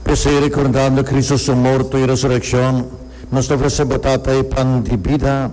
P'esei, rekordando Kristu su morto i resurekshon, nos ta ofresé bo Tata e pan di bida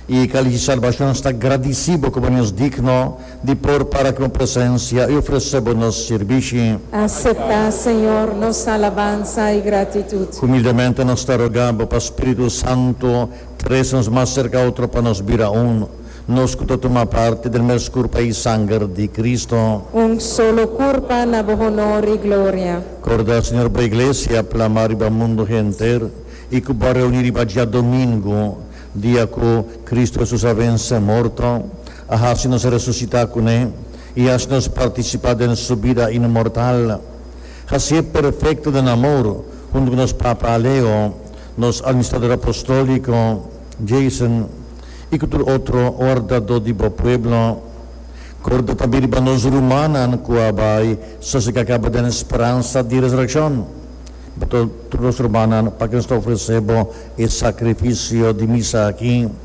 i e kalis di salbashon. Sta gradisí bo ku bo nos digno di por para ku bo presensia i ofresé bo nos sirbishi. Aseptá, Señor, nos alabansa i gratitut. Humildemente nos ta rogá bo pa Spiritu Santu trese nos mas serka otro pa nos bira un. Nos cu ta tuma parti den mes curpa y sanger di Cristo. Un solo curpa na bo honor y gloria. Corda, Señor, bo Iglesia plama riba mundo henter y cu bo a reuni riba diadomingo, dia cu Cristo Hesus a vence morto, a haci nos resucita cu Ne y haci nos participa den Su bida inmortal. Hacié perfecto den amor hunto cu nos Papa Leo, nos Administrador Apostolico, Jason, i ku tur otro wardadó di bo pueblo. Korda tambe riba nos rumannan ku a bai sosega kaba den speransa di resurekshon. Bo ta tur nos rumannan pa ke nos ta ofresé bo e sakrifisio di misa aki.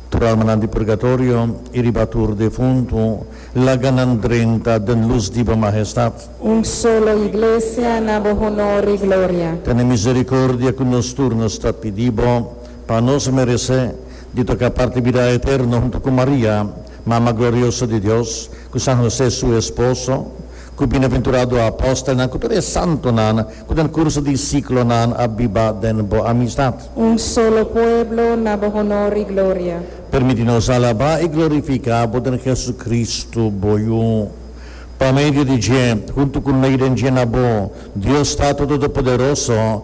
Tur almanan di purgatorio i riba tur defuntu, laga nan drenta den lus di bo Mahestat. Un solo Iglesia na bo honor i gloria. Tene miserikordia ku nos tur, nos ta pidi bo. Pa nos merece di toca parti bida eterno hunto cu Maria, Mama Glorioso di Dios, cu San Jose su esposo, cu bienaventurado apostelnan, cu tur e santonan cu den curso di ciclonan a biba den bo amistad. Un solo pueblo na bo honor y gloria. Permiti nos alaba y glorifica bo den Jesucristo, bo Yu. Pa medio di dje, hunto cu neiden dje na bo, Dios Tato Todopoderoso,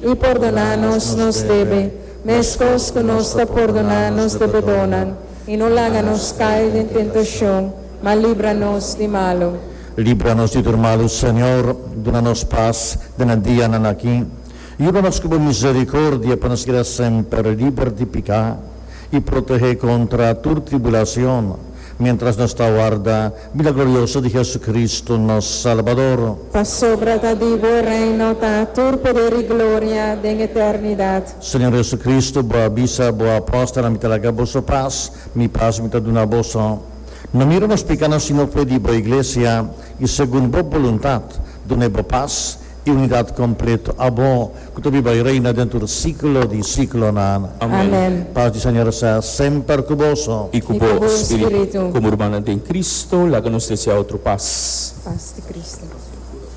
I pordoná nos nos debe, meskos ku nos ta pordoná nos debedónan. I no laga nos kai den tentashon, ma libra nos di malu. Libra nos di tur malu, Señor. Duna nos pas den nan dianan aki. Yuda nos ku bo miserikordia pa nos keda semper liber di piká i protehé kontra tur tribulasion, Miéntras nos ta warda bida glorioso di Jesucristo, nos Salbador. Pasobra ta di bo e reino, ta tur poder i gloria den eternidad. Señor Jesucristo, bo a bisa bo apóstolnan, Mi ta laga boso pas, Mi pas Mi ta duna boso. No mira nos pekanan, sino fe di bo Iglesia, i segun bo boluntad, duna e bo pas, E unidat kompleto abo ku ta biba i reina den tur siklo di siklonan. Amen. Pas di Señor sea semper ku boso. I ku bo spiritu. Komo urmannan den Kristu, laga nos deseá otro pas. Pas di Kristu.